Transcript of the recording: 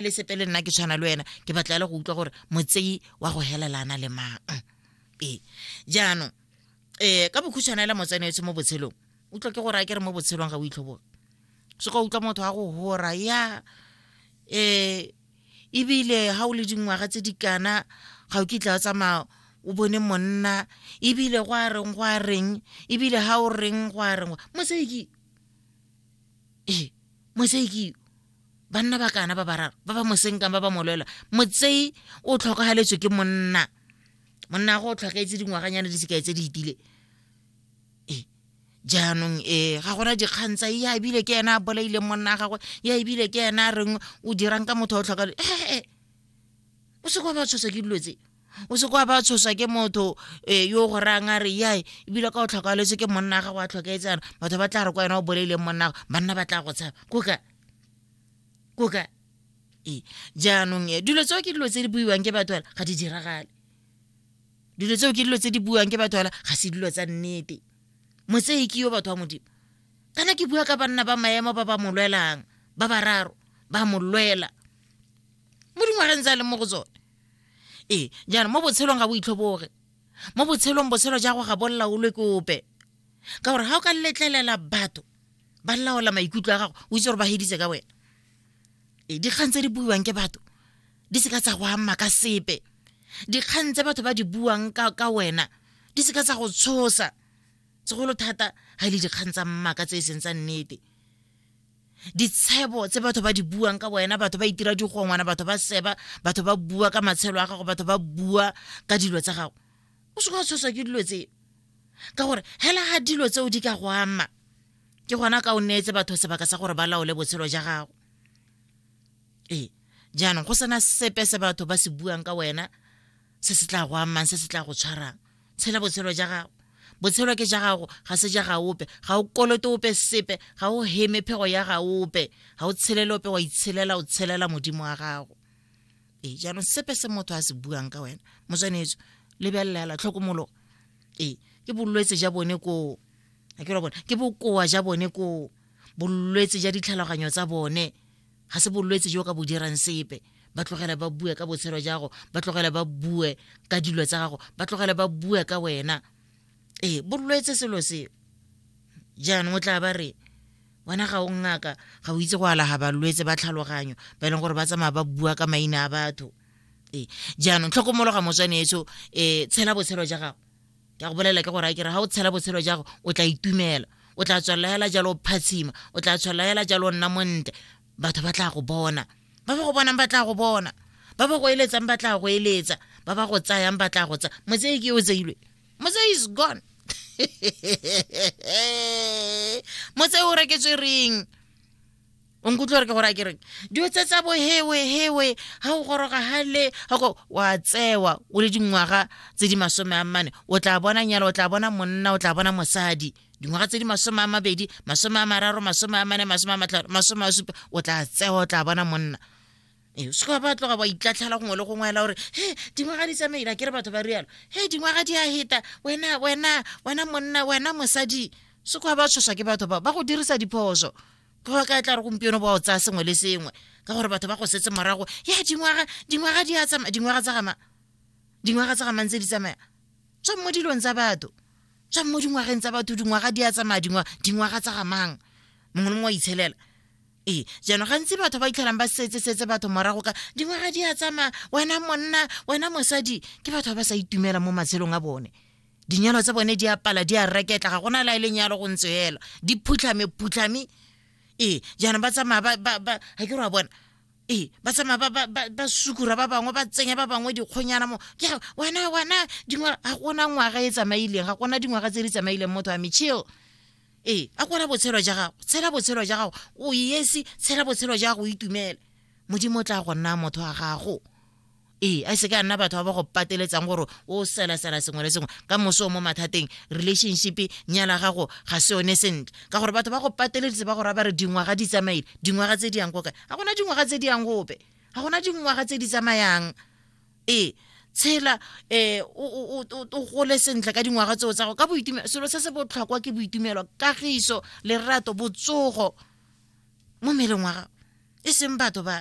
le sepe le nna ke tshwana le wena ke batla le go utlwa gore motseyi wa go helelana le mang ee jaanong um ka bokhutshwana la motsenetse mo botshelong utlwa ke gore a ke re mo botshelong ga o itlhoboga se ka utlwa motho wa go hora ya um ebile ga o le dingwaga tse di kana ga o kitla o tsamaya o bone monna ebile go a reng go a reng ebile ga o reng go a reng mo se ke ee motsei ke banna ba kana ba bararo ba ba mosenkang ba ba molwela motsei o tlhokagaletswe ke monna monna go o tlhokaetse dingwaganyane di sekai tse di itile ee jaanong ee ga gona dikgang tsa ya ebile ke ena a bolaileng monna a gagwe ya ebile ke ena a reng o dirang ka motho o tlhoka ee o se kwa ba tshoswa ke dilo tse o se kwa ba tshosa ke motho um yo go rayang a re yae ebile ka o tlhokafaletse ke monna ga go a tlhokaetsana batho ba tla re kwa wena o boleileng monnago banna ba tla go tshaba koka koka ee jaanong e dilo tseo ke dilo tse di buiwang ke batho ga di diragale dilo tseo ke dilo tse di buang ke batho ala ga se dilo tsa nnete motsei ke yo batho ba modimo kana ke bua ka banna ba maemo ba ba mo lwelang ba bararo ba mo lwela mo dingwageng tsa leng mo go tsone ee jaanong mo botshelong ga bo itlhoboge mo botshelong botshelo jago ga bo laolwe ke ope ka gore ga o ka letlelela batho ba laola maikutlo a gago o itse gore ba heditse ka wena ee dikgang tse di buiwang ke batho di seka tsa go ama ka sepe dikgang tse batho ba di buang ka, ka wena di seka tsa go tshosa segolo thata ga e le dikgang tsa mmaka tse e seng tsa nnete ditshebo tse batho ba di buang ka wena batho ba itira digongwana batho ba seba batho ba bua ka matshelo a gago batho ba bua ka dilo tsa gago o se ka tshoswa ke dilo tseo ka gore hela ga dilo tseo di ka go ama ke gona ka o neetse batho sebaka sa gore ba laole botshelo ja gago ee jaanong go sena sepe se batho ba se buang ka wena se se tla go amang se se tla go tshwarang tshela botshelo ja gago botshelo ke ja gago ga se ja gaope ga o kolote ope sepe ga o heme phego ya gaope ga o tshelele ope wa itshelela o tshelela modimo wa gago ee jaanong sepe se motho a se buang ka wena motswanetso lebelelela tlhokomolo ee ke bolwetse ja bone koo a ke ra bone ke bokoa ja bone koo bolwetse ja ditlhaloganyo tsa bone ga se bolwetse jo ka bo dirang sepe ba tlogela ba bue ka botshelo jago ba tlogela ba bue ka dilo tsa gago ba tlogela ba bue ka wena ee bolwetse selo seo jaanong o tla ba re wena ga o ngaka ga o itse go alaga balwetse ba tlhaloganyo ba e leng gore ba tsamaya ba bua ka maina a batho ee jaanong tlhokomologa motswaneetso um tshela botshelo ja gago ke a go bolelela ke gore a kere ga o tshela botshelo jago o tla itumela o tla tswelela hela jalo o phatshima o tla tswelela hela jalo o nna montle batho ba tla go bona ba ba go bonang ba tla go bona ba ba go eletsang ba tla go eletsa ba ba go tsayang ba tla go tsaya motsei ke o tseilwe motsei is gone motsei o reketswe reng o nkutlwa re ke gore a ke reng dilo tse tsa bohewe hewe ga o goroga gale gako wa tsewa o le dingwaga tse di masome a mmane o tla bona nyalo o tla bona monna o tla bona mosadi dingwaga tse di masome a mabedi masome a mararo masome a mane masome a matlhano masome a supa o tla tsewa o tla bona monna ee se ka ba tloga ba itlatlhela gongwe le gongwe ela gore he dingwaga di tsamaela ke re batho ba rialo he dingwaga di a heta wena wena wena monna wena mosadi se ka ba tshoswa ke batho ba ba go dirisa diphoso ka gore ka e tla re gompieno ba o tsaya sengwe le sengwe ka gore batho ba go setse morago ya dingwaga dingwaga di a tsamaya dingwaga tsa gama dingwaga tsa gamang tse di tsamaya tswang mo dilong tsa batho tswang mo dingwageng tsa batho dingwaga di a tsamaya dingwaga dingwaga tsa gamang mongwe le mongwe wa itshelela ee jaanong gantsi batho ba itlhelang ba setse setse batho morago ka dingwaga di a tsamaya wena monna wena mosadi ke batho ba ba sa itumela mo matshelong a bone dinyalo tsa bone di apala di a reketla ga gona la e lenyalo go ntse fela di phutlhame phutlhame ee jaanong ba tsamaya ga ke ra bona ee ba tsamaya ba sukura ba bangwe ba tsenya ba bangwe dikgonyana mo ke wena wena dingwaga ga gona ngwaga e tsamaileng ga gona dingwaga tse di tsamaileng motho a mechil ee a kwana botshelo ja gago tshela botshelo ja gago o yesi tshela botshelo ja gago o itumele modimo o tla go nna motho wa gago ee a se ka nna batho ba ba go pateletsang gore o selasela sengwe le sengwe ka moso o mo mathateng relationship nyala gago ga se yone sentle ka gore batho ba go pateleditse ba gore ba re dingwaga di tsamaile dingwaga tse di yang ko kae ga gona dingwaga tse di yang gope ga gona dingwaga tse di tsamayang ee tshela eh o gole sentle ka dingwaga tseo tsa go ka boitumelo selo se se botlhokwa ke boitumelo kagiso lerato botsogo mo meleng wa gago e seng batho ba